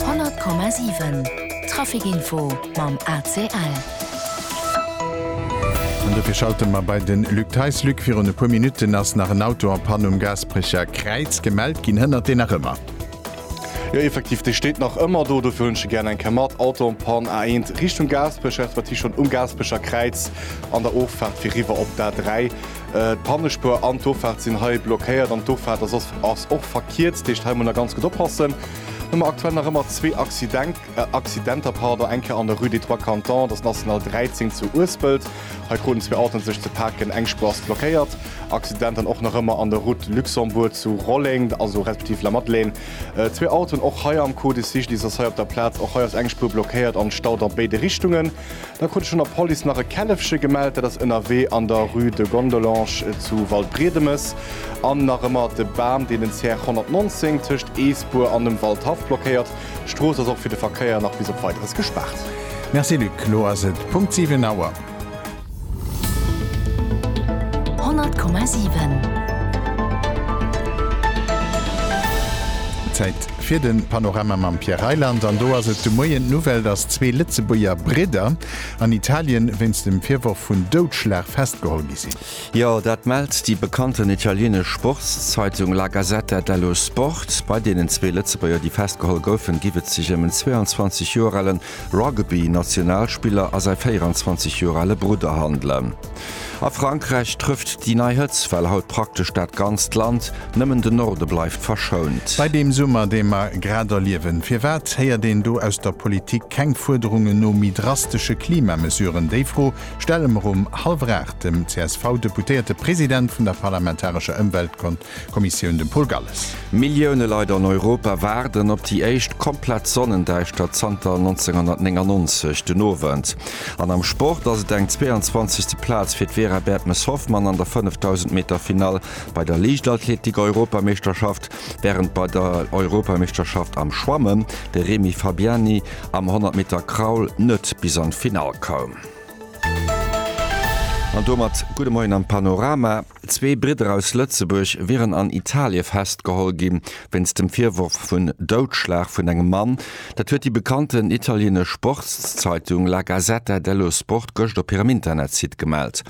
100,7 Trafic info mam ACL. An dofir schalte mer bei de Luc Theis. Luc, virun e puer Minutten ass nach en Auto a Panne um Gaasperecher Kräiz gemellt ginn. Hënnert deen nach ëmmer? Jo, effektiv, dee steet nach ëmmer do. Dofir hunn ech e gär eng Kéier mat. Auto en panne, A1 Richtung Gaasperech, respektiv schonn um Gaasperecher Kräiz an der Offaart fir riwwer op d'A3. D'Pannespur an d'Offaart sinn hei blockéiert an d'Offaart ass och verkierzt, dat heescht hei muss een ganz gutt oppassen. Hu mer aktuell nach ëmmer zwee Accidenter, eng Kéier an der Rue des Trois Cantons, dat ass National 13 zu Uespelt, hei kruten zwee Autoen et sech ze paken, eng Spur ass blockéiert. Accident dann och nach ëmmer an der Route Luxembourg zu Rolleng, also respektiv Lamadelaine, zwee Autoen och hei am Code cycliste ass hei op der Plaz, och hei ass eng Spur blockéiert an Stau a béide Richtungen. Da krut ech vun der Police nach e Källefche gemellt, dat ass ënnerwee an der Rue de Gondelange zu Waldbriedemes. An nach ëmmer de Bam, deen den CR 119 tëscht Eesbur an dem Waldhaff blockéiert. D'Strooss ass och fir de Verkéier nach bis op Weideres gespaart. Merci Luc, lo ass et Punkt 7 Auer. 100,7. Zäit fir de Panorama mam Pierre Reyland. An do ass et de Moien d'Nouvelle, dass zwee Lëtzebuerger Bridder an Italien wéinst dem Virworf vun Doudschlag festgeholl gi sinn. Jo, dat mellt déi bekannten italienesch Sportszeitung La Gazzetta dello Sport. Bei deenen zwee Lëtzebuerger, déi festgeholl goufen, giff et sech ëm en 22 Joer alen Rugby-Nationalspiller a säi 24 Joer ale Brudder handelen. A Frankräich trëfft déi nei Hëtzt well haut praktesch dat ganzt Land, nëmmen de Norde bleift verschount. Bei deem Summer, dee mer grad erliewen, firwat héiert een do aus der Politik keng Fuerderungen no méi drastesche Klimamesuren? Déi Fro stelle mer um hallwer aacht dem CSV-Deputéierte President vun der parlamentarescher Ëmweltkom Kommissioun dem Paul Galles. Millioune Leit an Europa waarden op déi éischt komplett Sonnendäischtert zanter 1999 den Owend. An am Sport ass et eng 22. Plaz fir d'Vera Bertmes-Hoffmann an der 5000 Meter Finall bei der Liichtathletik-Europameeschterschaft, wärend bei der Europameeschterschaft am Schwammen de Remi Fabiani am 100 Meter Kraul net bis an d'Finall koum. An domat gudde Moien am Panorama. Zwee Bridder aus Lëtzebuerg wieren an Italie festgeholl gi wéinst dem Virworf vun Doudschlag vun engem Mann. Dat huet déi bekannten italienesch Sportszeitung La Gazzetta dello Sport gëscht op hirem Internetsite gemellt.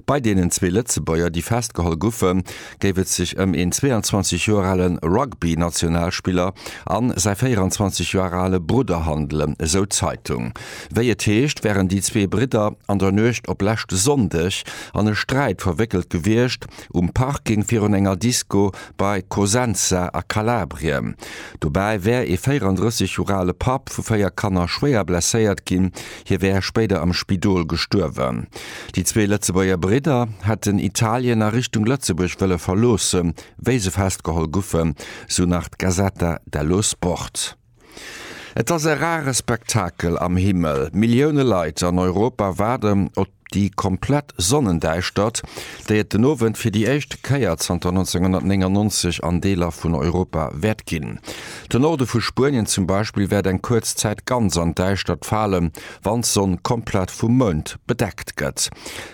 Bei deenen zwee Lëtzebuerger, déi festgeholl goufen, géif et sech ëm een 22 Joer ale Rugby-Nationalspiller an säi 24 Joer ale Brudder handelen, esou d'Zeitung. Wéi et heescht, wären déi zwee Bridder an der Nuecht op leschte Sonndeg an e Sträit verwéckelt gewiescht, um Parking virun enger Disco bei Cosenza a Kalabrien. Dobäi wär ee 34 Joer ale Papp vu véier Kanner schwéier blesséiert ginn, hie wär spéider am Spidol gestuerwen. Déi zwee Lëtzebuerger Bridder hätten Italien a Richtung Lëtzebuerg wëlle verloossen, wéi se festgeholl goufen, sou nach d'Gazzetta dello Sport. Et ass e rare Spektakel am Himmel, Millioune Leit an Europa waarden op déi komplett Sonnendäischtert, déi et den Owend fir déi éischt Kéier zanter 1999 an Deeler vun Europa wäert ginn. Den Norde vu Spuenien zum Beispill wäert eng kuerz Zäit ganz an d'Däischtert falen, wann d'Sonn komplett vum Mound bedeckt gëtt.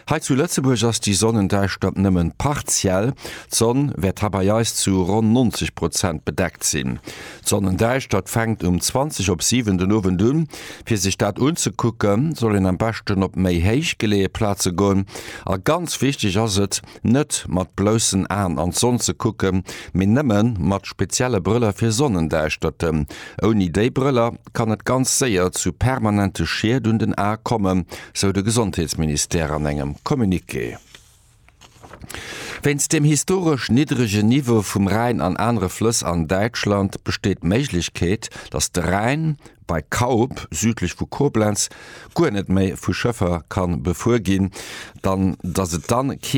Hei zu Lëtzebuerg ass déi Sonnendäischtert nëmmen partiell, d'Sonn wäert ha bei eis zu ronn 90 Prozent bedeckt sinn. D'Sonnendäischtert fänkt um 20 op 7 den Owend un. Fir sech dat unzekucken, soll een am beschten op méi héich geleeë Plaze goen. A ganz wichteg ass et, net mat bloussen Aen an d'Sonn ze kucken, mee nëmme mat spezielle Brëller fir Sonnendäischterten. Ouni déi Brëller kann et ganz séier zu permanente Schied un den Ae kommen, sou de Gesondheetsministère an engem Communiqué. Wéinst dem historesch niddregen Niveau vum Rhäin an anere Flëss an Däitschland besteet d'Méiglechkeet, datt de Rhäin bei Kaup, südlech vu Koblenz, guer net méi vu Schëffer ka befuer ginn, datt et dann kee